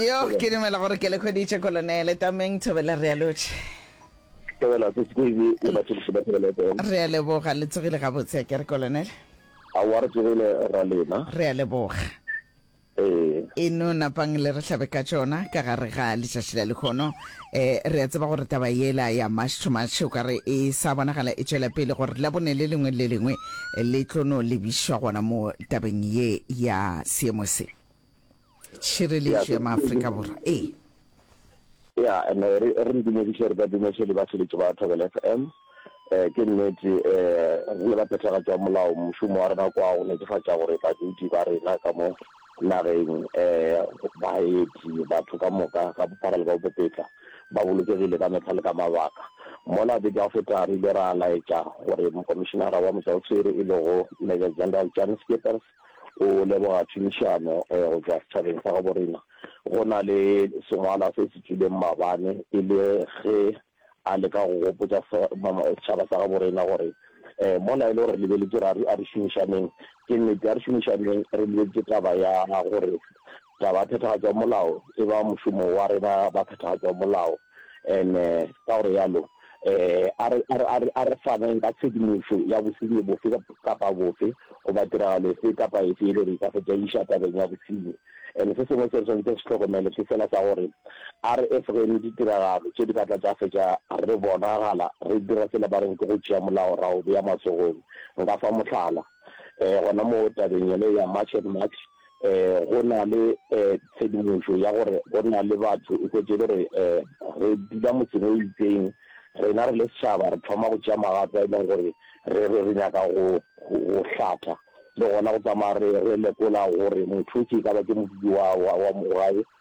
Yo, ke dumela gore ke le hweditše Kolonele. Tameng, Thobela, re a lotšha. Thobela, Sesi Koibi le batšhološi ba Thobela FM. Re a leboga, le tsogile gabotse a kere Kolonele? Aowa re tsogile ra lena. Re a leboga. Ee. E no napang le re hlabe ka tšona ka gare ga letšatši la lehono. Um, re a tseba gore taba yela ya March to March o ka re e sa bonagala e tšwela pele gore Labone le lengwe le le lengwe le tlo no lebišwa gona moo tabeng ye ya seemo se. tšhireletšo ya maAfrika Borwa. Ee. Ya, and re re re dumediše re ka dumediše le baseletši ba Thobela FM. Eh, ke nnete eh, re le ba phethagatši ba molao, mošomo wa rena kwa go netefatša gore badudi ba rena ka mo nageng eh, baeti, batho ka moka ka bophara le ka bopepetla ba bolokegile ka mehla le ka mabaka. Mola beke ya go feta re ile ra laetša gore mokomišenara wa motšwaoswere e lego Major General Jan Schippers o leboga tšhomišano go tšwa setšhabeng sa gabo rena. Go na le sengwalwa se se tšwileng mabane e le ge a leka go gopotša setšhaba sa gabo rena gore mola e le gore re lebeletše ra re a re šomišaneng, ke nnete a re šomišaneng re lebeletše taba ya gore Taba ya phethagatšo ya molao e ba mošomo wa rena ba phethagatšo ya molao, and ka gore yalo a re, a re, a re, a re faneng ka tshedimošo ya bosenyi bofe kapa bofe goba tiragalo efe kapa efe yele re ka se tlaiša tabeng ya bosenyi. And se sengwe se re swanetše re se hlokomele ke sela sa gore a re efogeng ditiragalo tše di ka tla tša fetša re bonagala re dira sela ba reng ke go tšea molao ra o bea matsogong. Nka fa mohlala gona moo tabeng yele ya March and March. um go na le um tshedimošo ya gore go na le batho o kwetše gore um re dula motseng o itseng rena re le setšhaba re thoma go tšea magato a e leng gore re re re nyaka go go hlatha le gona go tsamaya re re lekola gore motho ke ka ba ke modudi wa wa wa mogae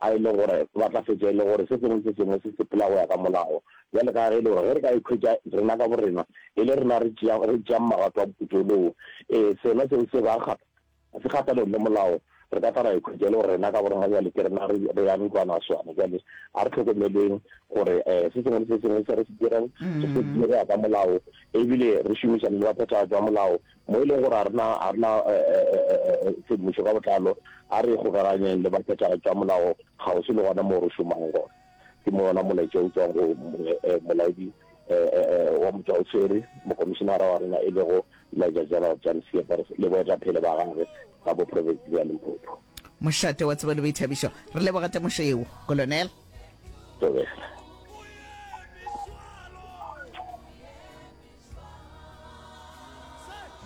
a e le gore ba tla fetša e le gore se sengwe le se sengwe se sepela go ya ka molao. Bjale ka ge e le gore ge re ka ikhwetša rena ka borena e le rena re tšeang magato a moputso woo, ee, sona seo se ba se kgahlanong le molao, re ka tla ra ikhwetša e le gore rena ka borena bjale ke rena re yang ntlwanaswana. Bjale a re hlokomeleng gore um se sengwe le se sengwe se re se dirang re se dire go ya ka molao e bile re šomišane le baphethagatši ba molao. Mo e lego gore a re na a re na tshedimošo ka botlalo, a re ikgokaganyeng le baphethagatši ba molao kgauswi le gona moo re šomago gona. Ke mo wona molaetša o tšwang go Molaodi wa Motšwaoswere, Mokomišenara wa rena e lego Major General Jan Slippers le boetaphele ba gagwe ba bo profense bja Limpopo. Mošate wa tsebo le boithabišo, re leboga temošo yeo, Kolonel. Thobela.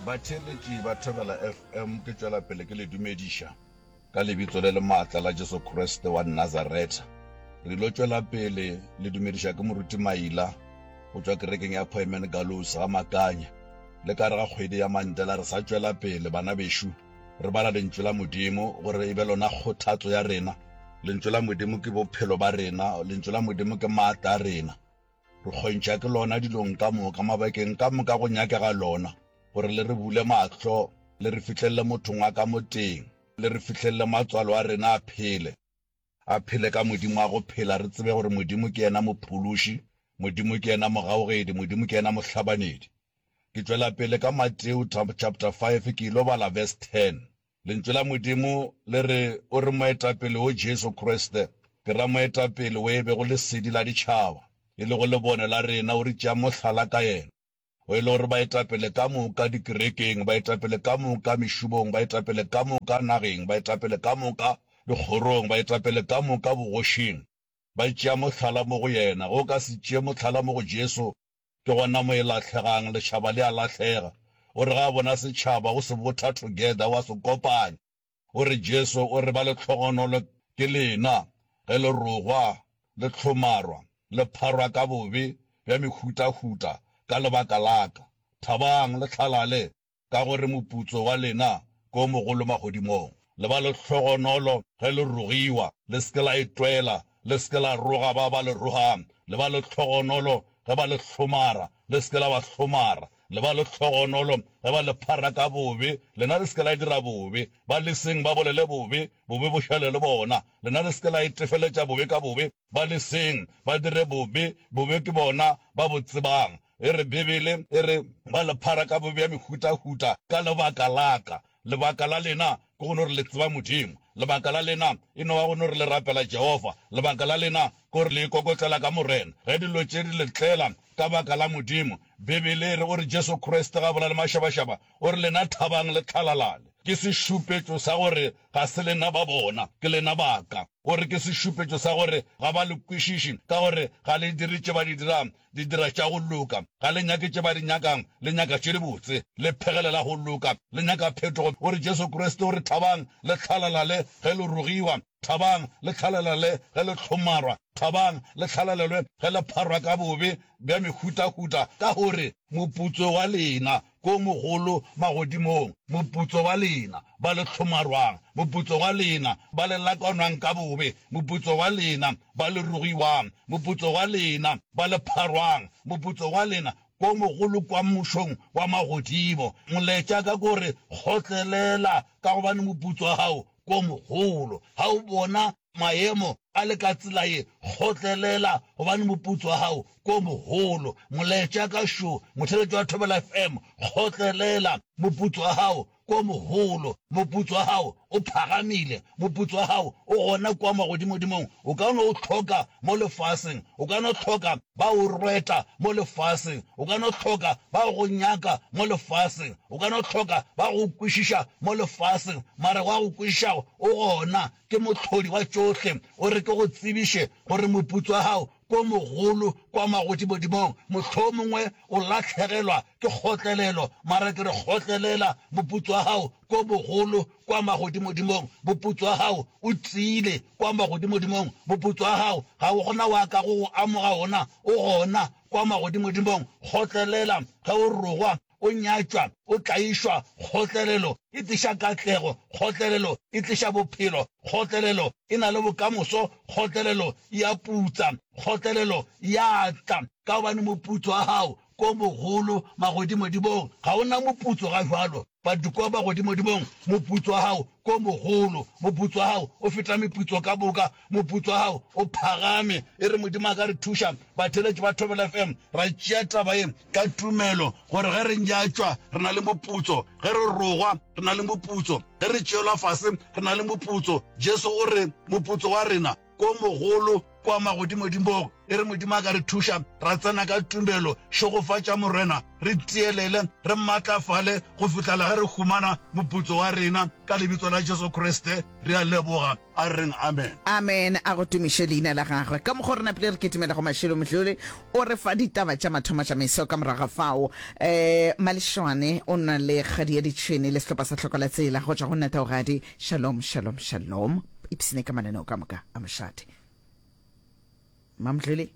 Batheeletši ba Thobela FM, ke tšwela pele ke le dumediša ka lebitso le le maatla la Jesu Kriste wa Nazaretha. Re ilo tšwela pele le dumediša ke Moruti Maila go tšwa kerekeng ya Poemen Gallows Gamakanya. Le ka gare ga kgwedi ya Mandela re sa tšwela pele, bana bešo, re bala Lentšu la Modimo gore e be lona kgothatso ya rena. Lentšu la Modimo ke bophelo ba rena, Lentšu la Modimo ke maatla a rena. Re kgontšha ke lona dilong ka moka, mabakeng ka moka go nyakega lona, gore le re bule mahlo, le re fihlelele mothong wa ka moteng, le re fihlelele matswalo a rena a phele, a phele ka Modimo a go phela, re tsebe gore Modimo ke yena Mophološi, Modimo ke yena Mogaogedi, Modimo ke yena Mohlabanedi. Ke tšwela pele ka Mateo chapter five, ke ilo bala verse ten. Lentšu la Modimo le re, O re Moetapele wo Jesu Kriste, ke ra Moetapele wo e bego lesedi la ditšhaba, e lego lebone la rena, o re tšea mohlala ka yena. O e le gore baetapele ka moka dikerekeng, baetapele ka moka mešomong, baetapele ka moka nageng, baetapele ka moka dikgorong, baetapele ka moka bogošing, ba tšea mohlala mo go yena. Ge o ka se tšee mohlala mo go Jesu, Ke gona mo e lahlegang, lešhaba le a lahlega. O re ga a bona setšhaba, o se botha together, o a se kopanya. O re, Jesu o re ba le tlhogonolo ke lena, ge le rogwa, le hlomarwa, le pharwa ka bobe bja mehutahuta ka lebaka la ka. Thabang, le hlalale. ka gore moputso wa lena ke o mogolo magodimong. Le ba le hlogonolo ge le rogiwa, le se ke la e twela, le se ke la roga ba ba le rogang, le ba le hlogonolo ge ba le hlomara, le se ke la ba hlomara, le ba le hlogonolo ge ba le phara ka bobe, lena le se ke la dira bobe, ba leseng ba bolele bobe, bobe bo šale le bona, lena le se ke la e tefeletša bobe ka bobe, ba leseng ba dire bobe, bobe ke bona ba bo tsebang. E re, Bibele e re, Ba le phara ka bobe bja mehutahuta ka lebaka la ka. Lebaka la lena ke go no re le tseba Modimo. Lebaka la lena e no ba go no re le rapela Jehofa. Lebaka la lena ke gore le ikokotlela ka Morena. Ge dilo tše di le tlela ka baka la Modimo, Bibele e re, O re Jesu Kriste ga bolae le mašabašaba, o re lena thabang le tlhalalale. Ke sešupetšo sa gore ga se lena ba bona, ke lena ba ka. O re ke sešupetšo sa gore ga ba le kwešiši ka gore ga le dire tše ba di dirago. Di dira tša go loka, ga le nyake tše ba di nyakang, le nyaka tše dibotse. Le phegelela go loka, le nyaka phetogo. O re, Jesu Kriste o re, Thabang le tlhalalale ge le rogiwa, thabang le tlhalalale ge le hlomarwa, thabang le tlhalalelwe ge le pharwa ka bobe bja mehutahuta, ka gore moputso wa lena Ko mogolo magodimong, moputso wa lena, ba le hlomarwang, moputso wa lena, ba le lakanwang ka bobe, moputso wa lena, ba le rogiwang, moputso wa lena, ba le pharwang, moputso wa lena, ko mogolo kwa mmušong wa magodimo. Molaetša ka ko re, Kgotlelela, ka gobane moputso wa gago ko mogolo. Ga o bona? mayemo a le ka tsela ye, kgotlelela gobane moputso wa gago ko mogolo. Molaetša ka šo, motheletšo wa Thobela FM, kgotlelela, moputso wa gago ko mogolo, moputso wa gago o phagamile, moputso wa gago o gona kwa magodimodimong, o ka no o hloka mo lefaseng, o ka no hloka ba o rweta mo lefaseng, o ka no hloka ba go nyaka mo lefaseng, o ka no hloka ba go kwešiša mo lefaseng, mara wa go kwešišago o gona Ke Mohlodi wa tšohle. O re ke go tsebiše gore moputso wa gago ke o mogolo kwa magodimodimong. Mohlomongwe o lahlegelwa ke kgotlelelo, mara ke re kgotlelela, moputso wa gago ke o mogolo kwa magodimodimong. Moputso wa gago o tiile kwa magodimodimong. Moputso wa gago ga go na wa ka go go amoga wona, o gona kwa magodimodimong. Kgotlelela ge o rogwa. O nyatšwa, o tlaišwa, kgotlelelo e tliša katlego, kgotlelelo e tliša bophelo, kgotlelelo e na le bokamoso, kgotlelelo e a putsa, kgotlelelo ya tla. Ka gobane moputso wa gago ke o mogolo magodimodimong, ga o na moputso ga bjalo, but kua magodimodimong moputso wa gago ke o mogolo, moputso wa gago o feta meputso ka moka. Moputso wa gago o phagame. E re Modimo a ka re thuša, batheeletši ba Thobela FM ra tšea taba ye ka tumelo, gore ge re nyatšwa re na le moputso, ge re rogwa re na le moputso, ge re tšeelwa fase re na le moputso. Jesu o re moputso wa rena ke o mogolo, ke wa magodimodimog. E re Modimo a ka re thuša, ra tsena ka tumelo. Šegofatša Morena, re tielele, re matlafale go fihlela ge re humana moputso wa rena. Ka Lebitso la Jesu Kriste re a leboga. a reng Amen. Amen, a go tumiše Leina la Gagwe. Ka mokgo re napile re kitimela go mašilo, Mdluli o re fa ditaba tša mathomo tša meso. Ka morago ga fao, eh, Malešwane o na le Kgadi ya Ditšhwene le sehlopa sa Hloko la Tsela go tšwa go Nataogadi. Shalom, shalom, shalom. Ipsine ka mananeo ka moka a mošate. Mmamdluli.